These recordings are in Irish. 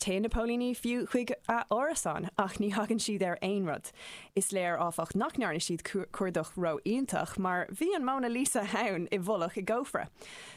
Téann na póilíní fiú chuig a árasán ach ní thagann siad ar aon rud. Is léir, áfach, nach ndearna siad cuardach ró-iontach mar bhí an Mona Lisa ann i bhfolach i gcófra.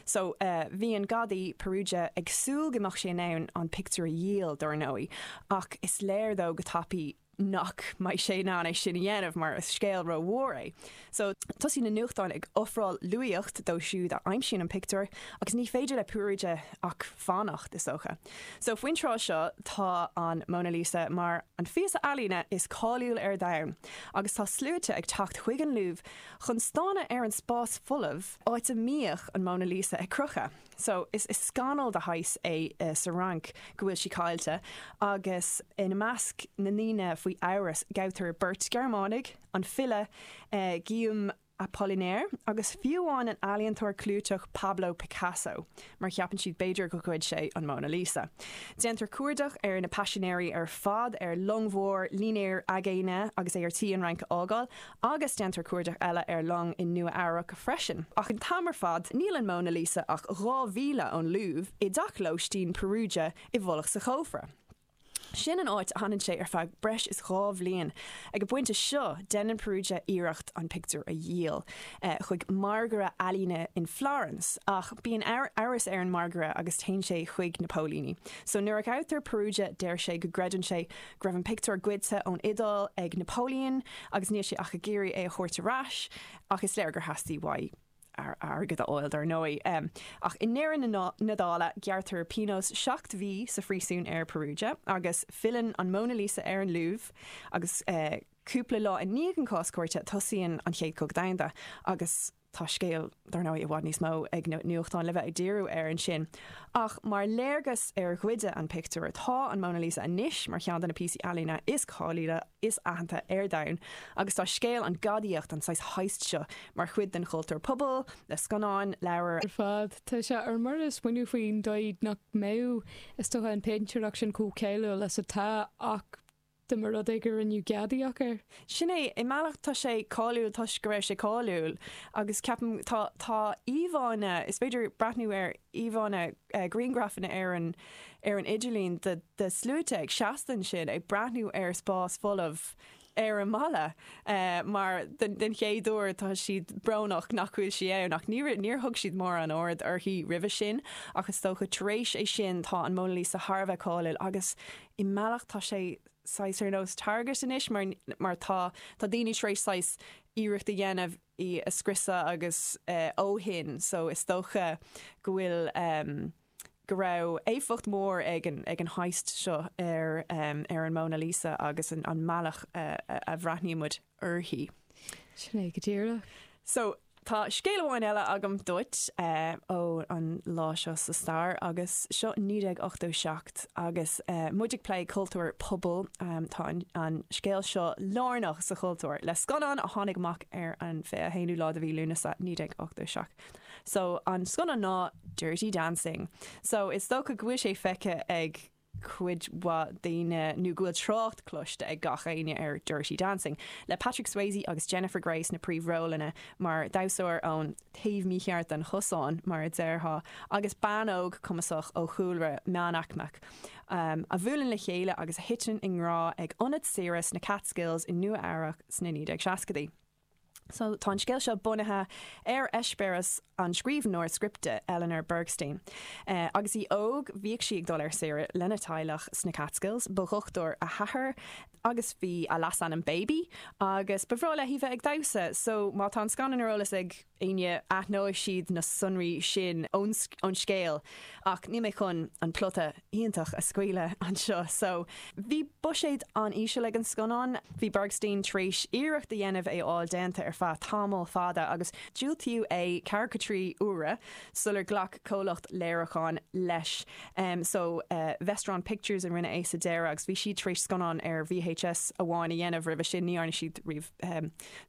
Só, bhí an gadaí, Peruggia, ag súil go mbeadh sé in ann an pictiúr a dhíol, dar ndóigh, ach is léir dó go tapaidh, nach mbeidh sé in ann é sin a dhéanamh mar is scéal rómhór é. So, tosaíonn na nuachtáin ag ofráil luaíocht dó siúd a aimsíonn an pictiúr agus ní féidir le Peruggia ach fanacht, is dócha. So, faoin tráth seo tá an Mona Lisa mar an phíosa ealaíne is cáiliúil ar domhan agus tá sluaite ag teacht chuig an Louvre chun stánadh ar an spás folamh áit a mbíodh an Mona Lisa ag crochadh. So, is scannal de shaghas é sa Fhrainc go bhfuil sí caillte, agus ina measc na ndaoine faoi amhras, gabhtar beirt Ghearmánach, an file Guillaume Apollinaire agus fiú amháin an ealaíontóir clúiteach Pablo Picasso, mar cheapann siad b'fhéidir gur ghoid sé an Mona Lisa. Déantar cuardach ar na paisinéirí ar fad ar long mhór, línéar aigéine, agus é ar tí an Fhrainc a fhágáil, Agus déantar cuardach eile ar long i Nua Eabhrac freisin. Ach an t-am ar fad níl an Mona Lisa ach dhá mhíle ón Louvre, i dteach lóistín Peruggia i bhfolach sa chófra. Sin an áit a fhanann sé ar feadh breis is dhá bhliain. Ag an bpointe seo déanann Peruggia iarracht an pictiúr a dhíol chuig mangaire ealaíne in Florence. Ach bíonn amhras ar an mangaire agus téann sé chuig na póilíní. So nuair a ghabhtar Peruggia deir sé go gcreideann sé go raibh an pictiúr goidte ón Iodáil ag Napoleon agus níl sé ach ag iarraidh é a thabhairt ar ais, ach is léir gur theastaigh uaidh airgead a fháil, dar ndóigh. Ach i ndeireadh na dála, gearrtar pionós seacht mhí sa phríosún ar Peruggia agus filleann an Mona Lisa ar an Louvre agus cúpla lá i ndiaidh an chás cúirte, tosaíonn an Chéad Chogadh Domhanda agus. Tá scéal, dar ndóigh, i bhfad níos mó ag na nuachtáin le bheith ag díriú air ansin. Ach mar gheall gur goideadh an pictiúr, tá an Mona Lisa anois mar cheann de na píosaí ealaíne is cáiliúla, is aitheanta ar domhan. Agus tá scéal an ghadaíocht, an saghas heist seo, mar chuid den chultúr pobail, le scannáin, leabhair ar fad. Tá sé ar mire a smaoineamh faoin dóigh nach mbeadh, is dócha, an péintéireacht sin chomh cáiliúil is atá ach. dá mba rud é gur rinneadh gadaíocht air. Sin é, i mbealach tá sé cáiliúil toisc go raibh sé cáiliúil agus ceapaim tá, tá íomhánna, is féidir breathnú ar íomhánna, grianghrafanna ar an, ar an idirlíon de, de shluaite ag seasamh ansin ag breathnú ar spás folamh ar an mballa mar den, den chéad uair tá siad brónach nach bhfuil sí ann ach ní raibh, níor thug siad mórán aird uirthi roimhe sin ach is dócha tar éis é sin tá an Mona Lisa thar a bheith cáiliúil agus i mbealach tá sé saghas ar nós target anois mar mar tá tá daoine tar éis saghas iarracht a dhéanamh í a scriosadh agus eh ó shin so is dócha go bhfuil ehm go raibh éifeacht mhór ag an ag an heist seo ar ehm ar an Mona Lisa agus an an mbealach a a bhreathnaíonn muid uirthi. Sin é go díreach. So, tá scéal amháin eile agam duit ó an lá seo sa stair agus seo 1987 agus muid ag plé cultúr pobail. Tá an scéal seo lárnach sa chultúr le scannán a tháinig amach ar an 21ú lá de mhí Lúnasa 1987. So, an scannán ná Dirty Dancing. So, is dócha go bhfuil sé feicthe ag. cuid mhaith daoine, nó go bhfuil trácht cloiste ag gach éinne ar Dirty Dancing, le Patrick Swayze agus Jennifer Grey sna príomhrólanna, mar dhamhsóir ón taobh mícheart den chosán, mar a déarfá, agus bean óg chumasach ó chúlra meánaicmeach, a bhuaileann le chéile agus a thiteann i ngrá ag ionad saoire sna Catskills i Nua-Eabhrac sna 1960idí. So, tá an scéal seo bunaithe ar eispéireas an scríbhneoir scripte Eleanor Bergstein. Agus í óg, bhíodh sí ag dul ar saoire lena teaghlach sna Catskills, ba dhochtúir a hathair agus ba é a leasainm Baby agus ba bhreá léi bheith ag damhsa. So, má tá an scannán ar eolas ag éinne, aithneoidh siad na sonraí sin ón scéal ach níl mé chun an plota iontach a scaoileadh anseo so bhí buiséad an-íseal ag an scannán. Bhí Bergstein tar éis iarracht a dhéanamh é a fháil déanta ar feadh tamall fada agus diúltaíodh é ceathracha trí uair sular ghlac comhlacht léiriúcháin leis so Vestron Pictures a rinne é sa deireadh agus bhí siad tar éis scannáin ar VHS amháin a dhéanamh roimhe sin, ní dhearna siad riamh.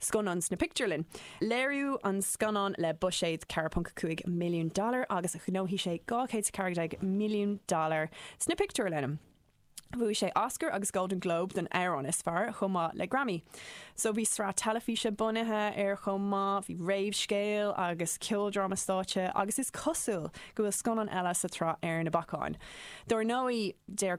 scannán sna pictiúrlanna. Léiríodh an scannán le buiséad $4.5 milliún agus ghnóthaigh sé $214 milliún sna pictiúrlanna. Bhuaigh sé Oscar agus Golden Globe don amhrán is fearr chomh maith le Grammy. So bhí sraith teilifíse bunaithe air chomh maith, bhí réamhscéal agus ceoldráma stáitse agus is cosúil go bhfuil scannán eile sa tsraith ar na bacáin. Dár ndóigh, deir.